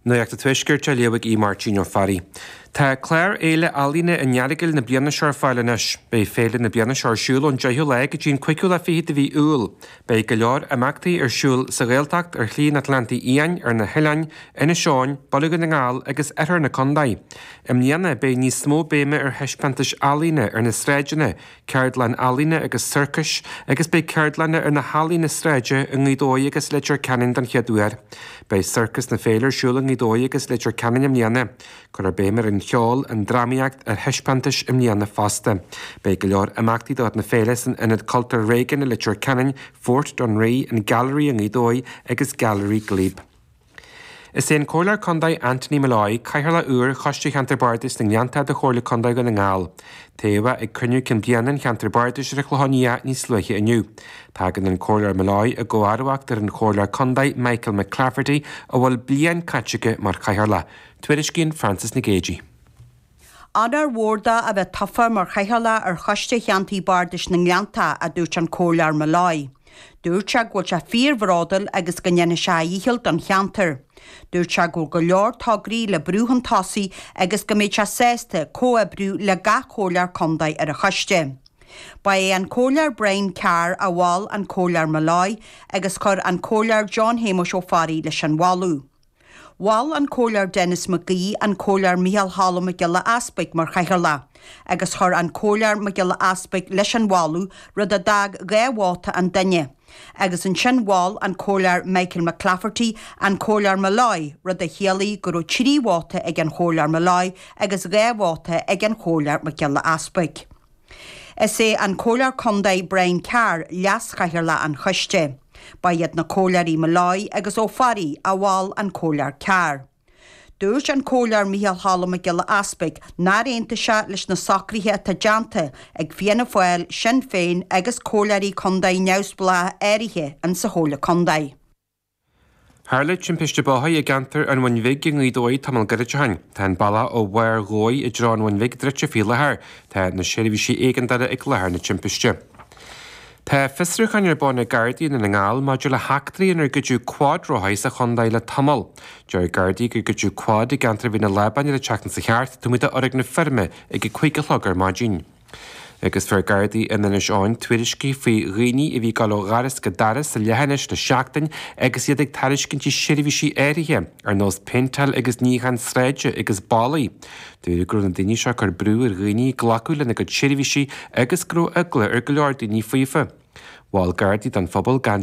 Nuacht an Tuaiscirt á léamh ag Aodh Máirtín Ó Fearraigh. Tá clár Fhéile Ealaíne an Earagail na bliana seo ar fáil anois. Beidh féile na bliana seo ar siúl ón 10ú lá go dtí an 5ú lá fichead de mhí Iúil. Beidh go leor imeachtaí ar siúl sa Ghaeltacht, ar Shlí an Atlántaigh Fhiáin, ar na hoileáin, Inis Eoghain, Baile Dhún na nGall agus oirthear na contae. I mbliana beidh níos mó béime ar thaispeántais ealaíne ar na sráideanna, ceardlann ealaíne agus sorcais agus beidh ceardlanna ar na healaíona sráide i nGaoth Dobhair agus Leitir Ceanainn den chéad uair. Beidh Sorcas na Féile ar siúl i nGaoth Dobhair agus Leitir Ceanainn i mbliana. Cuirfear béim ar an cheol, an drámaíocht, ar thaispeántais i mbliana fosta. Beidh go leor imeachtaí de chuid na féile san Ionad Cultúir Réigiúin i Leitir Ceanainn, Fort Dunree, an Gailearaí i nGaoth Dobhair agus Gailearaí Glebe. Is é an Comhairleoir Contae Anthony Molloy cathaoirleach úr Choiste Cheantar Bardais na nGleannta de Chomhairle Contae Dhún na nGall. Toghadh é ag cruinniú cinn bliana an Cheantar Bardais ar an Chlochán Liath níos luaithe inniu. Tagann an Comhairleoir Molloy i gcomharbacht ar an Chomhairleoir Contae Michael McClafferty a bhfuil bliain caite aige mar chathaoirleach. Tuairiscíonn Frances Nic Géadaigh. Onóir mhór dó a bheith tofa mar chathaoirleach ar Choiste Cheantar Bardais na nGleannta, a dúirt an Comhairleoir Molloy. Dúirt sé go bhfuil sé fíorbhróduil agus go ndéanfaidh sé a dhícheall don cheantar. Dúirt sé go bhfuil go leor tograí le brú chun tosaigh agus go mbeidh sé sásta comhoibriú le gach Comhairleoir Contae ar an choiste. Ba é an Comhairleoir Brian Carr a mhol an Comhairleoir Molloy agus chuir an Comhairleoir John Shéamuis Ó Fearraigh leis an mholadh. Mhol an Comhairleoir Denis Mac Aoidh an Comhairleoir Micheál Cholm Mac Giolla Easpaig mar chathaoirleach agus chuir an Comhairleoir Mac Giolla Easpaig leis an mholadh, rud a d'fhág dhá vóta an duine. Agus ansin mhol an Comhairleoir Michael McClafferty an Comhairleoir Molloy, rud a chiallaigh go raibh trí vóta ag an Chomhairleoir Molloy agus dhá vóta ag an Chomhairleoir Mac Giolla Easpaig. Is é an Comhairleoir Contae Brian Carr leaschathaoirleach an choiste. Ba iad na Comhairleoirí Molloy agus Ó Fearraigh a mhol an Comhairleoir Carr. Dúirt an Comhairleoir Micheál Cholm Mac Giolla Easpaig nár aontaigh sé leis na socruithe atá déanta ag Fianna Fáil, Sinn Féin agus comhairleoirí contae neamhspleácha áirithe in sa Chomhairle Contae. Tharla timpiste bóthair i gceantar an Bhuin Bhig i nGaoth Dobhair tamall gairid ó shin. Tá an bealach ó Bharr Dhobhair i dtreo an Bhuin Bhig druidte faoi láthair. Tá na seirbhísí éigeandála ag láthair na timpiste. Tá fiosrúcháin ar bun ag Gardaí Dhún na nGall maidir le heachtraí inar goideadh cuadrothair sa chontae le tamall. Deir Gardaí gur goideadh quad i gceantar Mhín an Lábáin ar an tseachtain seo chuaigh thart, taobh amuigh de fhoirgneamh feirme ag a 5 a chlog ar maidin. Agus fuair Gardaí in Inis Eoghain tuairiscí faoi dhaoine a bhí ag dul ó dhoras go doras sa leithinis le seachtain agus iad ag tairiscintí seirbhísí áirithe, ar nós péinteáil agus níochán sráide agus ballaí. Dúradh go raibh na daoine seo ag cur brú ar dhaoine glacadh lena gcuid seirbhísí agus go raibh eagla ar go leor daoine faofa. Mhol Gardaí don phobal gan